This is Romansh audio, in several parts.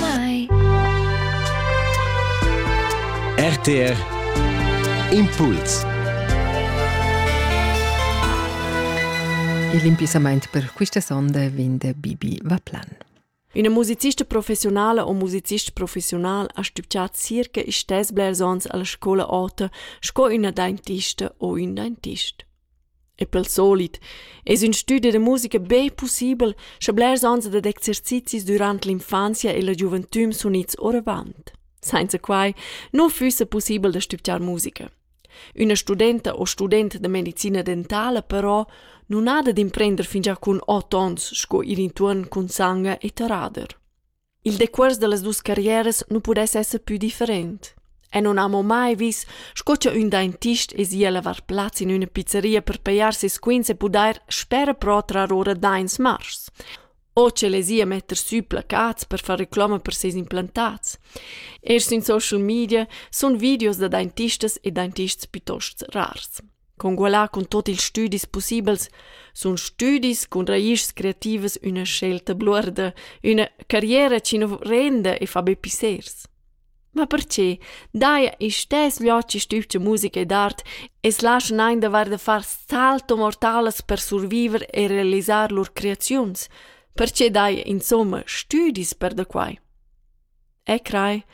mai. RTR Impuls Il impissamaint per quista sonda vin da Bibi Vaplan. Üna musicista professionala o musicist professional ha stübgià circa istess blers ons alla scoula ota sco üna dentista o ün dentist. E pel solit es ün stüdi da musica be pussibel, scha blers ans ed ad exercizis dürant l'infanzia e la giuventüm sun its oravant. Sainza quai nu füssa pussibel da stübgiar musica. Üna studenta o student da medicina dentala però nun ha da d'imprender fingià cun ot ons sco ir intuorn cun sanga e tarader. Il decuors dallas dus carrieras nu pudess esser pü different. E non amo mai vis, sco cha ün dentist es i a lavar plaz in üna pizzeria per pejar ses quints e pudair spera però trar ora daints mars. O ch'el es i a metter sü placats per far reclama per seis implantats. Erst in social media sun videos da dentistas e dentists piuttost rars. Congualar cun tut ils stüdis pussibels sun stüdis cun raischs creativas üna scelta bluorda, üna carriera chi nu renda e fa be pissers. Ma perche? Daja istess viaci stübgia musica ed art e's laschan eir davair da far salto mortalas per surviver e realisar lur creaziuns. Perche daja insomma stüdis per da quai? E crai,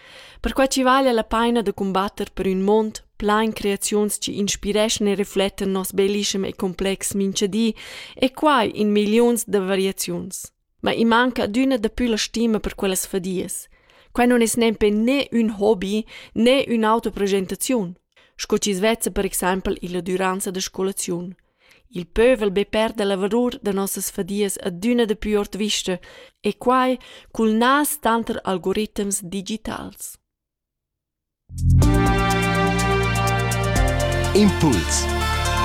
perquai chi vala la paina da cumbatter per ün mond plain creaziuns chi inspireschan e reflettan nos bellischem e complex mincha di e quai in milliuns da variaziuns. Ma i manca adüna dapü la stima per quellas fadias. Quai non es nempe né ün hobi né ün'autoprogettaziun, sco chi's vezza per exaimpel illa düranza da scolaziun. Il pövel be perda la valur da nossas fadias adüna dapü ord vista e quai cul nas tanter algoritms digitals. Impuls